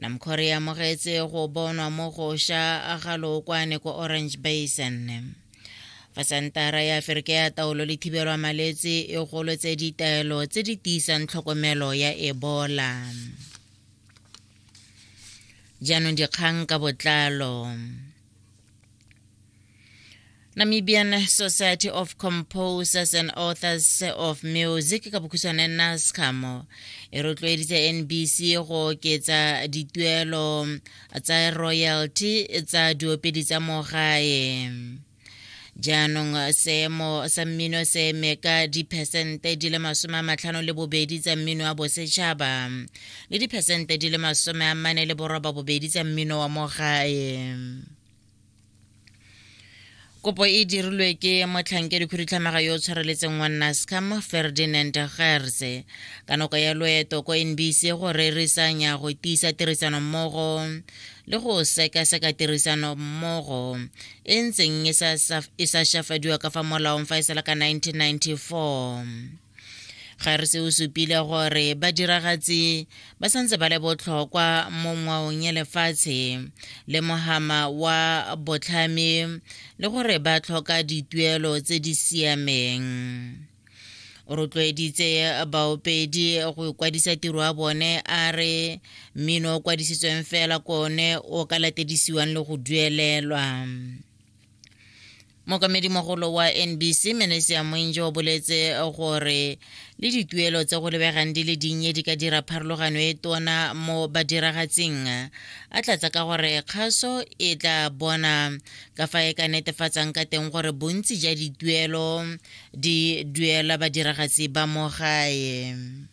namkhore ya mogetse go bonwa mo go sha ga lookwane ko orange basin fa santara ya aferika ya taolo le thibelwa malwetse e golotse ditaelo tse di tiisang tlhokomelo ya ebola jaanong dikgang ka botlalo Namibian Society of Composers and Authors of Music ka bokhutshwane NASCAM e rotloeditse NBC go oketsa dituelo tsa royalty tsa diopedi tsa mo gae jaanong seemo sa mmino se eme ka diphesente di le masome a matlhano le bobedi tsa mmino wa bosetšhaba le diphesente di le masome a mane le boroba bobedi tsa mmino wa mo gae kopo e dirilwe ke motlhankedi khudutlhamaga yo o tshwareletseng wa nascam ferdinand gerse ka nako ya loeto ko nbc go rerisanya go tiisa tirisano mmogo le go sekaseka tirisano mmogo e ntseng e sa e shafadiwa ka fa molaong fa e sala ka 1994 ga re se o supile gore badiragatsi ba santse ba le botlhokwa mo ngwaong ya lefatshe le mohama wa botlhami le gore ba tlhoka dituelo tse di siameng o rotloeditse baopedi go kwadisa tiro ya bone a re mmino o kwadisitsweng fela kone o ka latedisiwang le go duelelwa mokamedimogolo wa nbc menesia moinje o boletse gore le dituelo tse go lebegang di le dinnye di ka dira pharologano e tona mo badiragatsing a tlatsa ka gore kgaso e tla bona ka fa e ka netefatsang ka teng gore bontsi ja dituelo di duela badiragatsi ba mo gae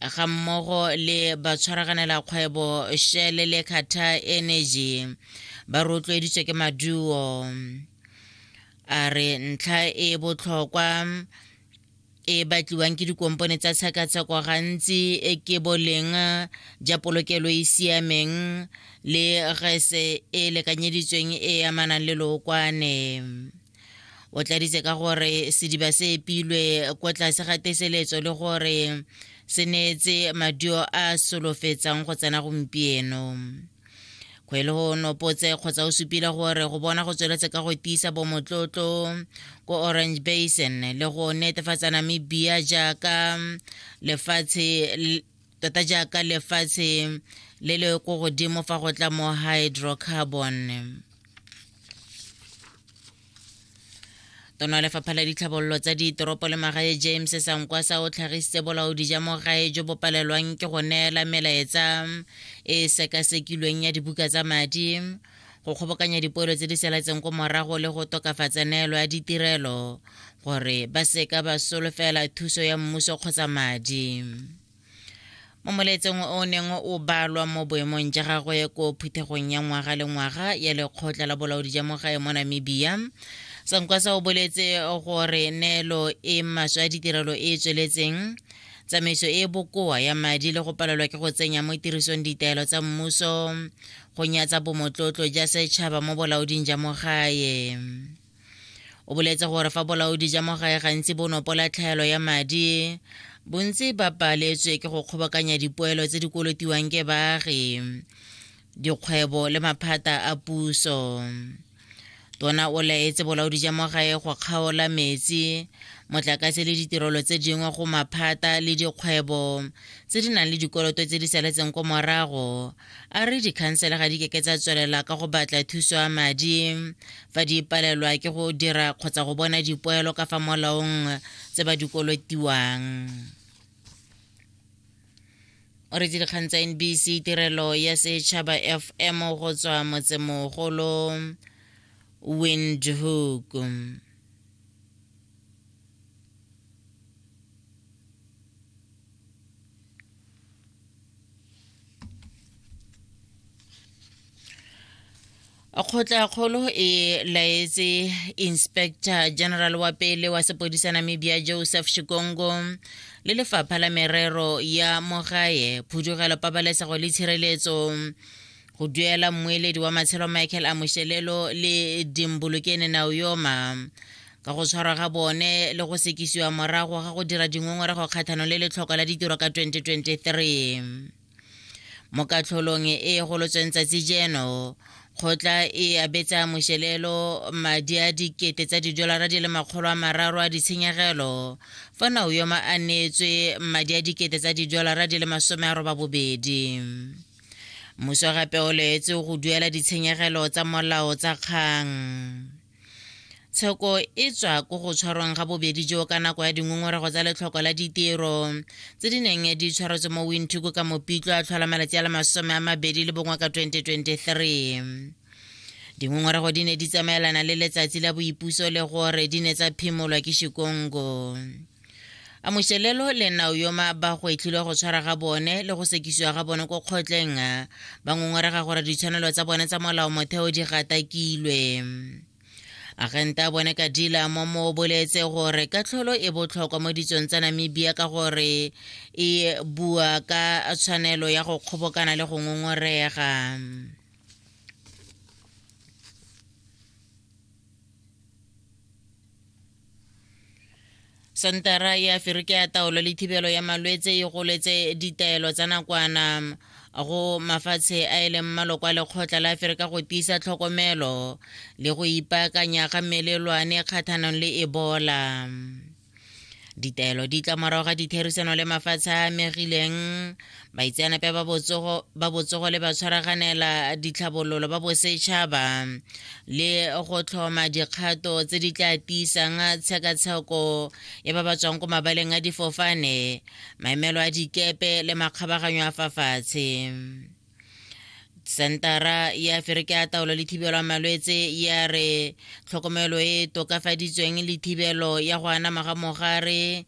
ga mmogo le batshwaraganela kgwebo Shell le Qatar Energy ba rotloeditswe ke maduo a re ntlha e botlhokwa e batliwang ke dikompone tsa tshekatsheko gantsi e ke boleng ja polokelo e siameng le gese e lekanyeditsweng e amanang le lookwane o tladitse ka gore sediba se epilwe kwa tlase ga teseletso le gore se neetse madio a solofetsang go tsena gompieno kgwele go nopotse kgotsa o supile gore go bona go tsweletse ka go tiisa bomotlotlo ko orange basin le go netefatsa namibia jaaka lefatshe tota jaaka lefatshe le le ko godimo fa go tla mo hydrocarbon tono ya lefapha la ditlhabololo tsa ditoropo le magae james sankwa sa o tlhagisitse bolaodi ja mo gae jo bo palelwang ke go neela melaetsa e sekasekilweng ya dibuka tsa madi go kgobokanya dipoelo tse di selatseng ko morago le go tokafatsa neelo ya ditirelo gore ba seka ba solofela thuso ya mmuso kgotsa madi mo moletseng o neng o balwa mo boemong ja gagwe ko phuthegong ya ngwaga le ngwaga ya lekgotla la bolaodi ja mogae mo namibia sankwasa o boletse gore neelo e maswe a ditirelo e e tsweletseng tsamaiso e e bokoa ya madi le go palelwa ke go tsenya mo tirisong ditaelo tsa mmuso go nyatsa bomotlotlo ja setšhaba mo bolaoding ja mogae o boletse gore fa bolaodi ja mo gae gantsi bo nopola tlhaelo ya madi bontsi ba paletswe ke go kgobokanya dipoelo tse di kolotiwang ke baagi dikgwebo le maphata a puso tona o laetse bolaodi ja mo gae go kgaola metsi motlakase le ditirelo tse dingwe go maphata le dikgwebo tse di nang le dikoloto tse di saletseng ko morago a re dikhansele ga di keke tsa tswelela ka go batla thuso ya madi fa di palelwa ke go dira kgotsa go bona dipoelo ka fa molaong tse ba di kolotiwang o re dikgang tsa nbc tirelo ya setšhaba fm go tswa motsemogolo windhoek kgotla-kgolo e laetse inspector general wa pele wa sepodisa namibia joseph shikongo le lefapha la merero ya mogae phudugelo pabalesego le tshireletso go duela mmueledi wa matshelo michael amošelelo le dimbolokene naoyoma ka go tshwarwa ga bone le go sekisiwa morago ga go dira dingongorego kgathano le letlhoko la ditiro ka 2023 mo katlholong e e golotsweng tsatsi jeno kgotla e abetsa mošelelo madi a dikete tsa didolara di le makgolo a mararo a ditshenyegelo fa naoyoma a neetswe madi a dikete tsa didolara di le masome a roba bobedi Mmuso gape o leetse go duela ditshenyegelo tsa molao tsa kgang. Tsheko e tswa ko go tshwarweng ga bobedi jo ka nako ya dingongorego tsa letlhoko la ditiro tse di neng di tshwaretswe mo Windhoek ka mopitlo a tlhola malatsi a le masome a mabedi le bongwe ka 2023. Dingongorego di ne di tsamaelana le letsatsi la boipuso le gore di ne tsa phimolwa ke Shikongo. a mošelelo le nao yo ma ba go etlhilwe go tshwara ga bone le go sekisiwa ga bone ko kgotleng ba ngongorega gore ditshwanelo tsa bone tsa molao motheo di gatakilwe agente a bone kadila mo mo boletse gore katlholo e botlhokwa mo ditsong tsa namibia ka gore e bua ka tshwanelo ya go kgobokana le go ngongorega sentara ya aferika ya taolo le thibelo ya malwetse e goletse ditaelo tsa nakwana go mafatshe a e leng maloko a lekgotla la aferika go tiisa tlhokomelo le go ipaakanya ga melelwane kgathanong le ebola ditaelo di tla morago ga ditherisano le mafatshe a megileng baitseanape ba botsogo ba botsogo le ba tshwaraganela ditlhabololo ba bosetšhaba le go tlhoma dikgato tse di tla tiisang tshekatsheko ya ba ba tswang ko mabaleng a difofane maemelo a dikepe le makgabaganyo a fa fatshe sentara ya aferika ya taolo le thibelo malwetse ya re tlhokomelo e tokafaditsweng le thibelo ya go anama ga mogare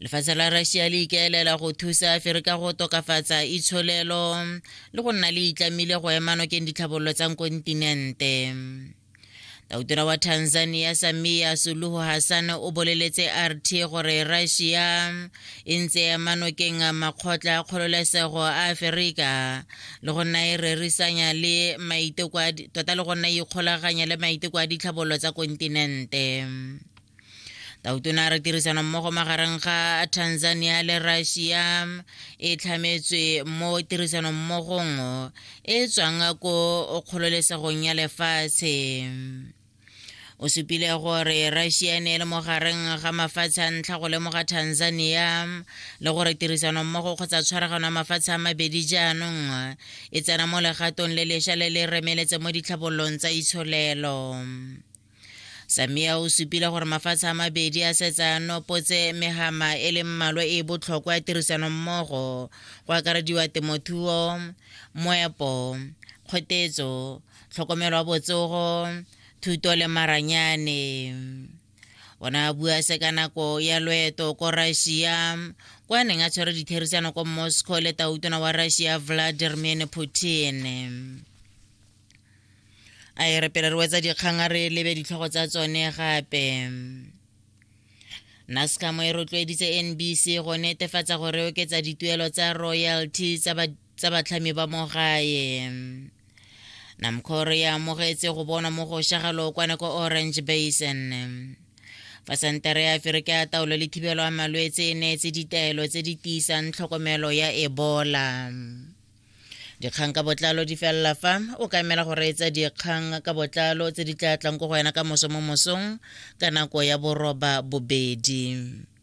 lefatshe la russia le ikaelela go thusa afere ka go tokafatsa itsholelo le go nna le itlamile go ema nokeng ditlhabololo tsa kontinente tautona wa tanzania samia suluhu hassan o boleletse rt gore russia e ntse ya manokeng a makgotla a kgololesego a aferika le go nna e rerisanya le maiteko tota le go nna e ikgolaganya le maiteko a ditlhabololo tsa kontinente tautona a re tirisano mmogo magareng ga tanzania le russia e tlhametswe mo tirisano mmogong e tswang ko kgololesegong ya lefatshe o supile gore russia e ne e le mogareng ga mafatshe a ntlha go lemoga tanzania le gore tirisanommogo kgotsa tshwaragano ya mafatshe a mabedi jaanong e tsena mo legatong le lesha le le remeletse mo ditlhabololong tsa itsholelo samia o supile gore mafatshe a mabedi a setsa nopotse megama e leng mmalwa e e botlhokwa ya tirisanommogo go akarediwa temothuo moepo kgotetso tlhokomelo ya botsogo thuto le maranyane o ne a bua se ka nako ya loeto ko russia kwa a neng a tshwere ditherisano ko moscow le tautona wa russia vladimir putin a e re pele re wetsa dikgang a re lebe ditlhogo tsa tsone gape nascamo e rotloeditse nbc go netefatsa gore oketsa dituelo tsa royalty tsa tsa batlhami ba mo gae namcor ya amogetse go bonwa mo go shaga lookwane ko orange basin fa sentere ya aferika ya taolo le thibelo ya malwetse e neetse ditaelo tse di tiisang tlhokomelo ya ebola dikgang ka botlalo di felela fa o ka emela go reetsa dikgang ka botlalo tse di tla tlang ko go wena ka moso mo mosong ka nako ya boroba bobedi